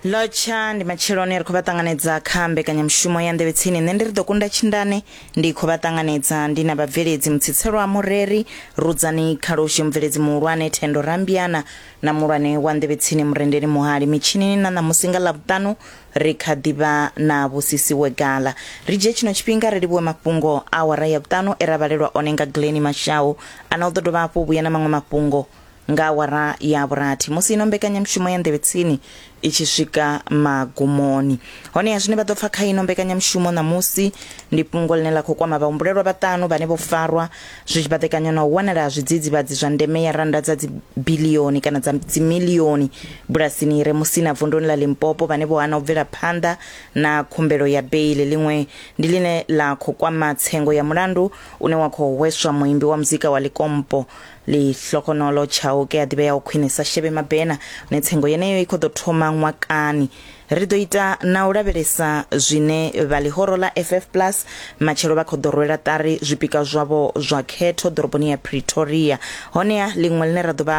lotsha ndi matsheloni ri khou vha ṱanganedza kha mbekanyamushumo ya nḓevhetsini nṋe ndi ri ḓo kunda tshindane ndi khou vha ṱanganedza ndi na vhabveledzi mutsitselwa mureri rudzani khaloshe mubveledzi muhulwane thendo rambiana na muhulwane wa nḓevhetsini murendeli muhali mitshinini na ṋamusi nga ḽavhuṱanu ri kha ḓivha na vhusisiwe gala ri dzhie tshino tshifhinga ri livhuwe mafhungo awara ya vhuṱanu e ra vhalelwa one nga gleni mashau ana u ḓo dovha hafhu vhuya na maṅwe mafhungo Nga awara ya vhurathi, musi ino mbekanyamushumo ya Nḓevhe Tsini i tshi swika magumoni. Honeha zwine vha ḓo pfa kha ino mbekanyamushumo ṋamusi ndi fhungo ḽine ḽa khou kwama vhahumbulelwa vhaṱanu vhane vho farwa zwi tshi baḓekanywa na u wanala ha zwidzidzivhadzi zwa ndeme ya rannda dza dzibilioni kana dza dzimilioni bulasini i re Musina vunduni ḽa Limpopo vhane vho hana u bvela phanḓa na khumbelo ya beili. Ḽiṅwe ndi ḽine ḽa khou kwama tsengo ya mulandu une wa khou hweswa muimbi wa muzika wa Likompo Lihlokonolo Chauke a ḓivhea o khwinisa Shebe Mabena hune tsengo yeneyo i khou ḓo thoma ṅwakani. Ri ḓo ita na u lavhelesa zwine vha ḽihoro ḽa FF Plus matshelo vha khou ḓo rwela ṱari zwipika zwavho zwa khetho ḓoroboni ya Pretoria. Honeha ḽiṅwe ḽine ra ḓo vha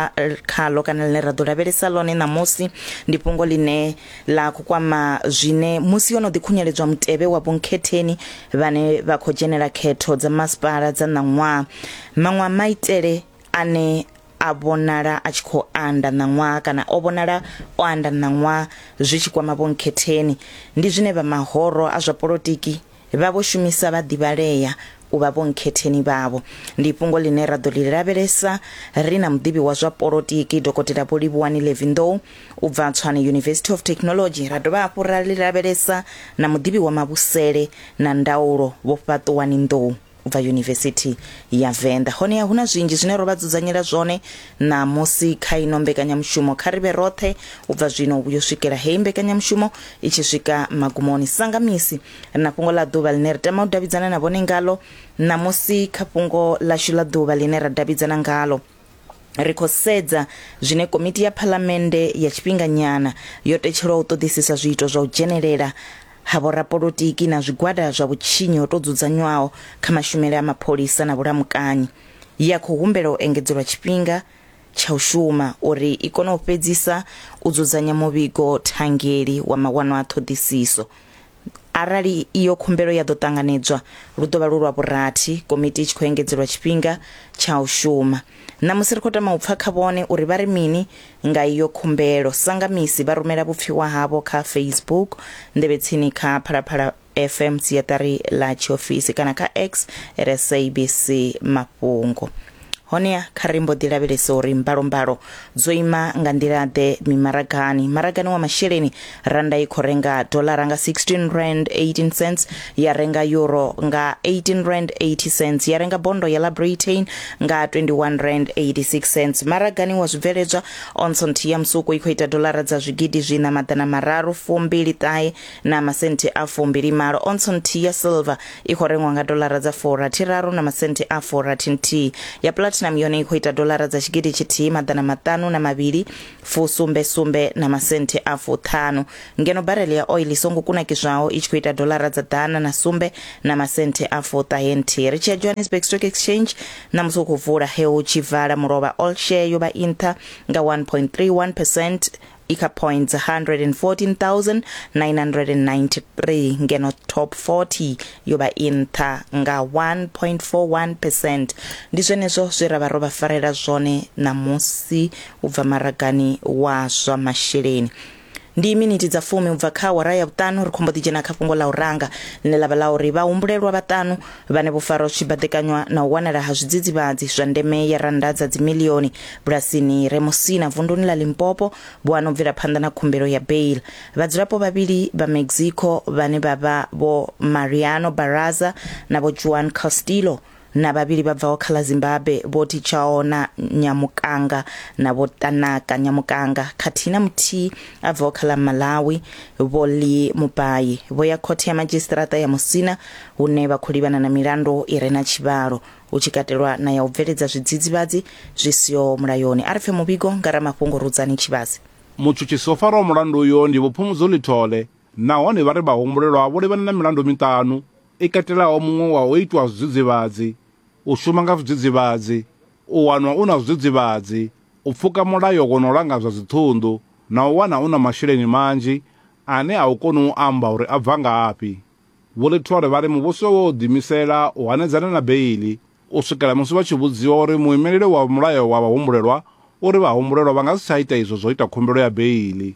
khaḽo kana ḽine ra ḓo lavhelesa ḽone ṋamusi ndi fhungo ḽine ḽa khou kwama zwine musi yo no ḓikhunyeledzwa mutevhe wa vhunkhetheni vhane vha khou dzhenela khetho dza masipala dza ṋaṅwaha maṅwe a maitele ane a vhonala a tshi khou anda ṋaṅwaha kana o vhonala o anda ṋaṅwaha zwi tshi kwama vhunkhetheni ndi zwine vha mahoro a zwa polotiki Vha vho shumisa vhaḓivhalea u vha vhonkhetheni vhavho. Ndi fhungo ḽine ra ḓo ḽi lavhelesa ri na muḓivhi wa zwa polotiki Dokotela Vho Livhuwani Levindou u bva Tshwane University of Technology, ra dovha hafhu ra ḽi lavhelesa na muḓivhi wa mavhusele na ndaulo Vho Fhaṱuwani Nḓou. bva yunivesithi ya venḓa honeha hu na zwinzhi zwine ro vha dzudzanyela zwone ṋamusi kha ino mbekanyamushumo kha ri vhe roṱhe u bva zwino u yo swikela heyi mbekanyamushumo i tshi swika magumoni sanga misi ri na fhungo ḽa ḓuvha ḽine ri tama u davhidzana na vhone ngalo ṋamusi kha fhungo ḽashu ḽa ḓuvha ḽine ra davhidzana ngalo ri khou sedza zwine komiti ya phalamennde ya tshifhinganyana yo tetshelwa u ṱoḓisisa zwiito zwa u dzhenelela ha vhorapolotiki na zwigwada zwa vhutshinyi ho tou dzudzanywaho kha mashumele a mapholisa na vhulamukanyi ye ya khou humbela u engedzelwa tshifhinga tsha u shuma uri i kone u fhedzisa u dzudzanya muvhigo thangeli wa mawanwa a ṱhoḓisiso Arali iyo khumbelo ya ḓo ṱanganedzwa, lu ḓo vha lu lwa vhurathi komiti i tshi khou engedzelwa tshifhinga tsha u shuma. Ṋamusi ri khou tama u pfa kha vhone uri vha ri mini nga iyo khumbelo. Sangamisi vha rumela vhupfiwa havho kha Facebook, Nḓevhetsini kha Phalaphala FM siaṱari ḽa tshiofisi kana kha X at SABC Mafhungo. Honeha kha ri mbo ḓi lavhelese uri mbalombalo dzo ima nga nḓila-ḓe mimaragani. Maragani wa masheleni, rannda i khou renga dolara nga 16 rand 18 cents, ya renga euro nga 18 rand 80 cents, ya renga bondo ya ḽa Britain nga 21 rand 86 cents. Maragani wa zwibveledzwa, onso nthihi ya musuku i khou ita dolara dza zwigidi zwiṋa maḓana mararu fumbili ṱahe na masenti a fumbilimalo ontso nthihi ya silver i khou rengwa nga dolara dza furathiraru na masenti a furathi nthihi ya platinum yone i khou ita dolara dza tshigidi tshithihi maḓana maṱanu na mavhili fusumbe sumbe na masenti a fuṱhanu ngeno barele ya oil i songo kunakiswaho i tshi khou ita dolara dza ḓana na sumbe na masenti a fuṱahe nthihi ri tshi ya johannesburg stock exchange ṋamusi u khou vula he hu tshi vala mulovha all share yo vha i nṱha nga 1.31 percent Ika points 114,993 ngeno top 40 yo vha i nṱha nga 1.41% ndi zwenezwo zwe ra vha ro vha farela zwone ṋamusi u bva maragani wa zwa masheleni ndi miniti dza fumi u bva kha awara ya vhuṱanu ri khombo ḓi dzhena kha fhungo ḽa u ranga ḽine ḽa vha ḽa uri vhahumbulelwa vhaṱanu Vhane vho farwa zwi tshi baḓekanywa na u wanala ha zwidzidzivhadzi zwa ndeme ya rannda dza dzimilioni bulasini i re Musina vunduni ḽa Limpopo vho ano bvela phanḓa na khumbelo ya bail. Vhadzulapo vhavhili vha Mexico vhane vha vha Vho Mariano Barraza na Vho Juan Castillo na vhavhili vha bvaho kha ḽa Zimbabwe Vho Tichaona Nyamukanga na Vho Tanaka Nyamukanga khathihi na muthihi a bvaho kha ḽa Malawi Vho Lee Mupayi vho ya khothe ya madzhisiṱiraṱa ya Musina hune vha khou livhana na milandu i re na tshivhalo, hu tshi katelwa na ya u bveledza zwidzidzivhadzi zwi siho mulayoni. A ri pfe muvhigo nga ramafhungo Rudzani Tshivhase. Mutshutshisi o faraho mulandu uyo ndi Vho Phumudzo Lithole nahone vha ri vhahumbulelwa vho livhana na milandu miṱanu i katelaho muṅwe wa u itwa zwidzidzivhadzi, u shuma nga zwidzidzivhadzi, u wanwa u na zwidzidzivhadzi, u pfuka mulayo wo no langa zwa dziṱhunḓu na u wana u na masheleni manzhi ane a u koni u amba uri a bva ngafhi. Vho Lithole vha ri muvhuso wo ḓiimisela u hanedzana na beiḽi u swikela musi vha tshi vhudziwa uri muimeleli wa mulayo wa vhahumbulelwa u ri vhahumbulelwa vha nga si tsha ita izwo zwa u ita khumbelo ya beiḽi.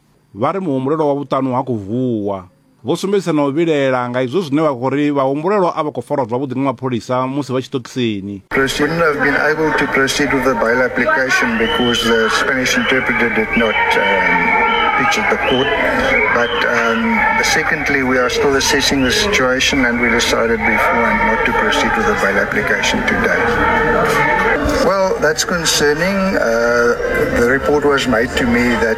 Vha ri muhumbulelwa wa vhuṱanu ha khou vuwa. Vho sumbedzisa na u vhilaela nga izwo zwine vha khou ri vhahumbulelwa a vha khou farwa zwavhuḓi nga mapholisa musi vha tshiṱokisini. Ri shouldn't have been able to proceed with the bail application because the Spanish interpreter did not um, pitch at the court. But um, secondly, we are still assessing the situation and we decided beforehand not to proceed with the bail application today. Well, that's concerning. Uh, the report was made to me that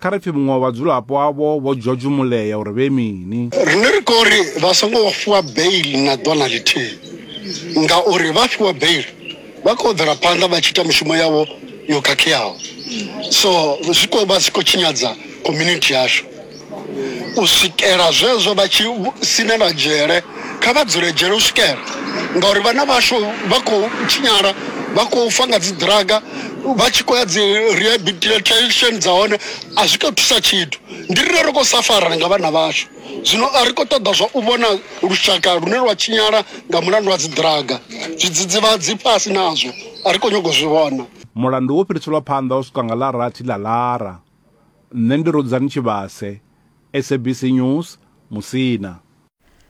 Kha ri pfi muṅwe wa vhadzulapo avho vho George Mulea uri vhe mini. Riṋe ri khou ri vha songo fhiwa beiḽi na ḓuvha na ḽithihi ngauri vha fhiwa beiḽi vha khou bvela phanḓa vha tshi ita mishumo yavho yo khakheaho so zwi khou vha zwi khou tshinyadza community yashu. U swikela zwezwo vha tshi sinelwa dzhele. Kha vha dzule dzhele u swikela ngauri vhana vhashu vha khou tshinyala vha khou fa nga dzi ḓiraga vha tshi khou ya dzi rehabilitation dza hone a zwi khou thusa tshithu ndi rine ri khou safarana nga vhana vhashu zwino a ri khou ṱoḓa zwa u vhona lushaka lune lwa tshinyala nga mulandu wa dzi ḓiraga zwidzidzivhadzi fhasi nazwo a ri khou nyago zwi vhona mulandu wo fhiriselwa phanḓa u swika nga ḽa rathi ḽa ḽara nṋe ndi rudzani tshivhase sabc news musina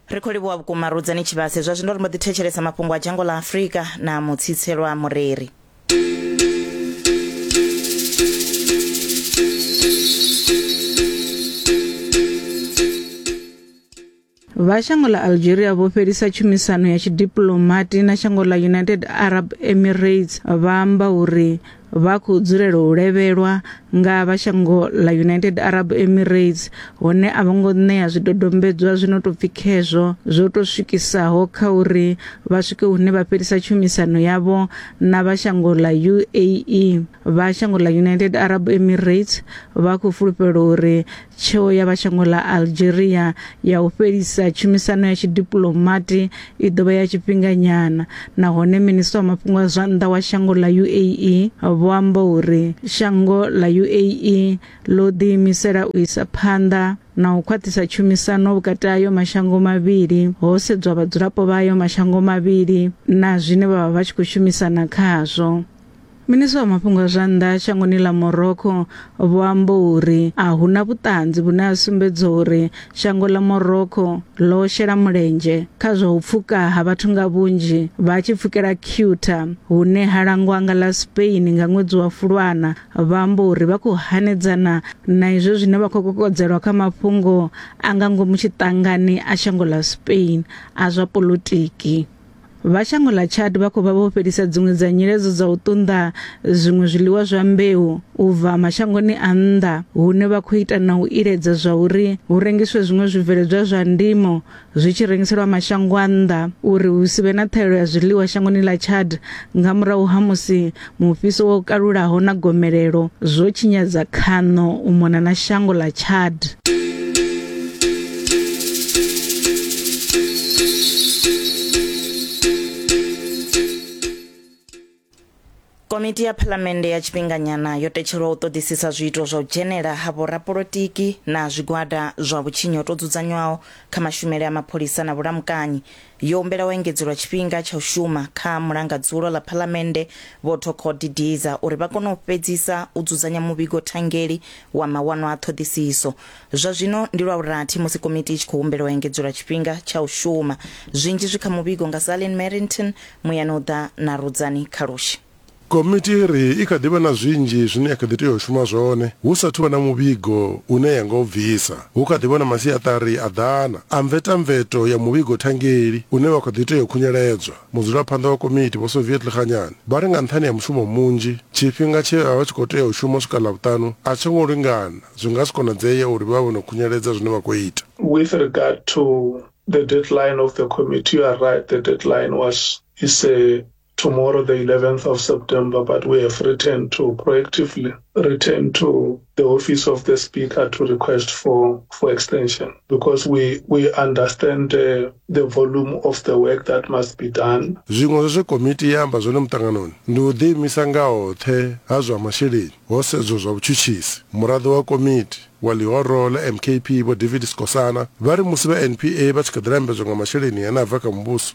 ri khou livhuwa vhukuma rudzani tshivhase zwa zwino ri mbo ḓi thetshelesa mafhungo a dzhango ḽa afurika na mutsitselwa mureri vha shango ḽa algeria vho fhelisa tshumisano ya tshidiplomati na shango ḽa united arab emirates vha amba uri vha khou dzulela u levhelwa nga vha shango ḽa United Arab Emirates hone a vho ngo ṋea zwidodombedzwa zwi no tou pfi khezwo zwo tou swikisaho kha uri vha swike hune vha fhelisa tshumisano yavho na vha shango ḽa UAE. Vha shango ḽa United Arab Emirates vha khou fulufhela uri Tsheo ya vha shango ḽa Algeria ya u fhelisa tshumisano ya tshidipuḽomati i ḓo vha ya tshifhinganyana nahone minisiṱa wa mafhungo a zwa nnḓa wa shango ḽa UAE vho amba uri shango ḽa UAE ḽo ḓiimisela u isa phanḓa na u khwaṱhisa tshumisano vhukati hayo mashango mavhili ho sedzwa vhadzulapo vhayo mashango mavhili na zwine vha vha vha tshi khou shumisana khazwo. Minisṱa wa mafhungo a zwa nnḓa shangoni ḽa Morocco vho amba uri a hu na vhuṱanzi vhune ha sumbedza uri shango ḽa Morocco ḽo shela mulenzhe kha zwa u pfuka ha vhathu nga vhunzhi vha tshi pfukela Ceuta hune ha langwa nga ḽa Spain nga ṅwedzi wa Fulwana vha amba uri vha khou hanedzana na izwo zwine vha khou kokodzelwa kha mafhungo a nga ngomu tshiṱangani a shango ḽa Spain a zwa polotiki. Vha shango ḽa Chad vha khou vha vho fhelisa dziṅwe dza nyiledzo dza u ṱunḓa zwiṅwe zwiḽiwa zwa mbeu u bva mashangoni a nnḓa hune vha khou ita na u iledza zwa uri hu rengiswe zwiṅwe zwibveledzwa zwa ndimo zwi tshi rengiselwa mashango a nnḓa uri hu si vhe na ṱhaelo ya zwiḽiwa shangoni ḽa Chad nga murahu ha musi Mufhiso wo kalulaho na gomelelo zwo tshinyadza khaṋo u mona na shango ḽa Chad. Komiti ya Phalamennde ya tshifhinganyana yo tetshelwa u ṱoḓisisa zwiito zwa u dzhenela ha vhorapolotiki na zwigwada zwa vhutshinyi ho tou dzudzanywaho kha mashumele a mapholisa na vhulamukanyi Yo humbela u engedzelwa tshifhinga tsha u shuma kha mulanga dzulo ḽa Phalamennde Vho Thoko Didiza uri vha kone u fhedzisa u dzudzanya muvhigo thangeli wa mawanwa a ṱhoḓisiso. Zwa zwino ndi lwa vhurathi musi komiti i tshi khou humbela u engedzelwa tshifhinga tsha u shuma. Zwinzhi zwi kha muvhigo nga Zalin Merrington, Muyani u ḓa na Rudzani Khalushi. Komiti i ri i kha ḓi vha na zwinzhi zwine ya kha ḓi tea u shuma zwone hu sa athu vha na muvhigo une ya nga u bvisa. Hu kha ḓi vha na masiaṱari a ḓana a mvetamveto ya muvhigo thangeli une wa kha ḓi tea u khunyeledzwa. Mudzulaphanḓa wa komiti Vho Soviet Lekganyane vha ri nga nṱhani ha mushumo munzhi, tshifhinga tshe vha vha tshi khou tea u shuma u swika Ḽavhuṱanu a tsho ngo lingana, zwi nga si konadzee uri vha vhe vho no khunyeledza zwine vha khou ita. With regard to the deadline of the committee, you are right, the deadline was, is a tomorrow, the 11th of September, but we have written to proactively written to the office of the speaker to request for, for extension because we, we understand the, the volume of the work that must be done. zwiṅwe zwa zwe komiti ya amba zwone muṱanganoni ndi u ḓiimisa nga hoṱhe ha zwa masheleni ho sedzwa zwa vhutshutshisi muraḓo wa komiti wa ḽihoro ḽa mkp vho david skosana vha ri musi vha npa vha tshi kha ḓi lambedzwa nga masheleni ane a bva kha muvhuso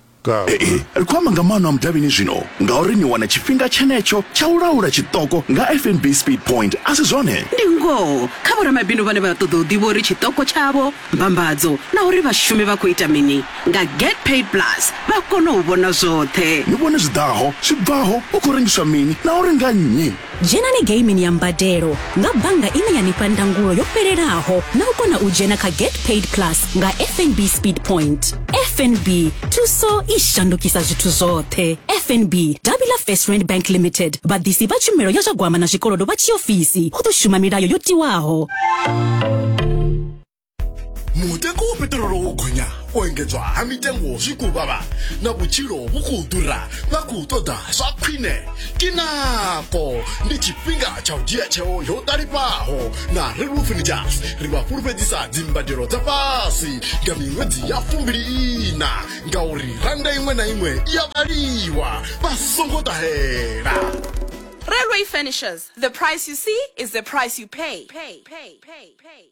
Ee, ri khou amba nga maano a mudavhini zwino ngauri ni wana tshifhinga tshenetsho tsha u laula tshiṱoko nga FNB Speed Point, a si zwone? Ndi ngoho kha vhoramabindu vhane vha ṱoḓa u ḓivha uri tshiṱoko tshavho, mbambadzo na uri vhashumi vha khou ita mini nga Get Paid Plus vha kona u vhona zwoṱhe. Ni vhone zwi ḓaho, zwi bvaho, hu khou rengiswa mini na uri nga nnyi. Dzhenani geimini ya mbadelo nga bannga ine ya ni fha ndangulo yo fhelelaho na u kona u dzhena kha Get Paid Plus nga FNB Speed Point. FNB, thuso i shandukisa zwithu zwoṱhe. FNB, davhi ḽa First Rand Bank Limited, vhaḓisi vha tshumelo ya zwa gwama na zwikolodo vha tshiofisi, hu ḓo shuma milayo yo tiwaho. mutengo wo peṱirolo wo gonya u engedzwa ha mitengo zwi khou vhavha na vhutshilo vhu khou ḓura vha khou ṱoḓa zwa khwine ke nako ndi tshifhinga tsha u dzhia tsheo yo ṱalifhaho na relwo furnitures ri vha fhulufhedzisa dzimbadelo dza fhasi nga miṅwedzi ya fumbili ina ngauri rannda iṅwe na iṅwe i ya vhaliwa vha songo ṱahela Railway Furnishers. The price you see is the price you pay. pay, pay, pay, pay.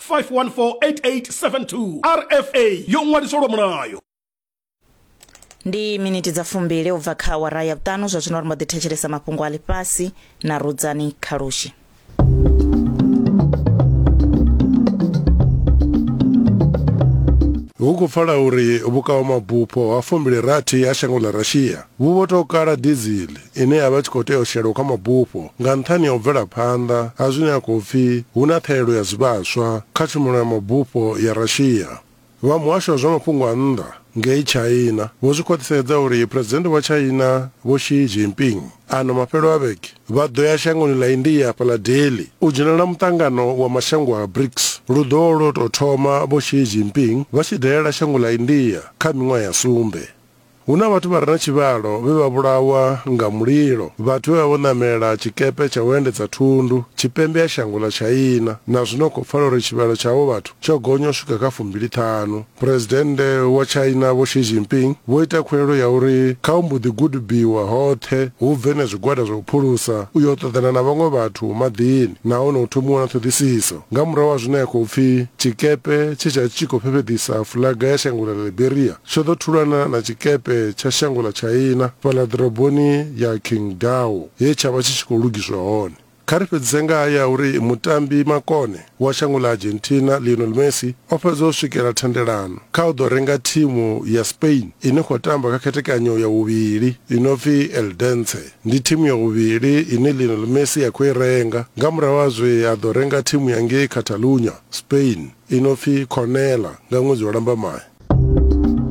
5148872 rfa yo ṅwaliswa lwa mulayo ndi miniti dza fumbili ubva kha awara ya vhuṱanu zwa zwino ri mbo ḓi thetshelesa mafhungo a ḽifhasi na rudzani khalushi hu khou pfala uri vhukaomabufho ha fumbili rathi ha shango ḽa russia vhu vho tou kala dizili ine ya vha i tshi khou tea u shelwa kha mabufho nga nṱhani ha u bvela phanḓa ha zwine ha khou pfi hu na ṱhahelelo ya zwivhaswa kha tshumelo ya mabufho ya Russia. Vha muhasho wa zwa mafhungo a nnḓa ngei China vho zwi khwaṱhisedza uri Phresidennde wa China Vho Xi Jinping ano mafhelo a vhege vha ḓo ya shangoni ḽa India hafha ḽa Delhi u dzhenela muṱangano wa mashango a BRICS. Lu ḓo lwo tou thoma Vho Xi Jinping vha tshi dalela shango ḽa India kha miṅwaha ya sumbe. Hu na vhathu vha re na tshivhalo vhe vha vhulawa nga mulilo, vhathu vhe vha vho ṋamela tshikepe tsha u endedza thundu tshipembe ha shango ḽa China, na zwino ri khou pfala uri tshivhalo tsha avho vhathu tsho gonya u swika kha fumbili ṱhanu. Phresidennde wa China Vho Xi Jinping vho ita khuwelelo ya uri kha hu mbo ḓi gudubiwa hoṱhe, hu bve na zwigwada zwa u phulusa u yo ṱoḓana na vhaṅwe vhathu maḓini nahone hu thomiwe na ṱhoḓisiso nga murahu ha zwine ha khou pfi tshikepe tshe tsha vha tshi tshi khou fhefheḓisa fuḽaga ya shango ḽa Liberia. Tsho ḓo thulana na tshikepe tsha shango ḽa Tshaina fhaḽa ḓoroboni ya Qingdao he tsha vha tshi tshi khou lugiswa hone. Kha ri fhedzise nga haya a uri mutambi makone wa shango ḽa Argentina Lionel Messi o fhedza o swikela thendelano kha u ḓo renga thimu ya Spain i no khou tamba kha khethekanyo ya vhuvhili i no pfi Eldense. Ndi thimu ya vhuvhili ine Lionel Messi a khou i renga nga murahu ha zwe a ḓo renga thimu ya ngei Catalunya. Spain i no pfi Cornella nga ṅwedzi wa Lambamai.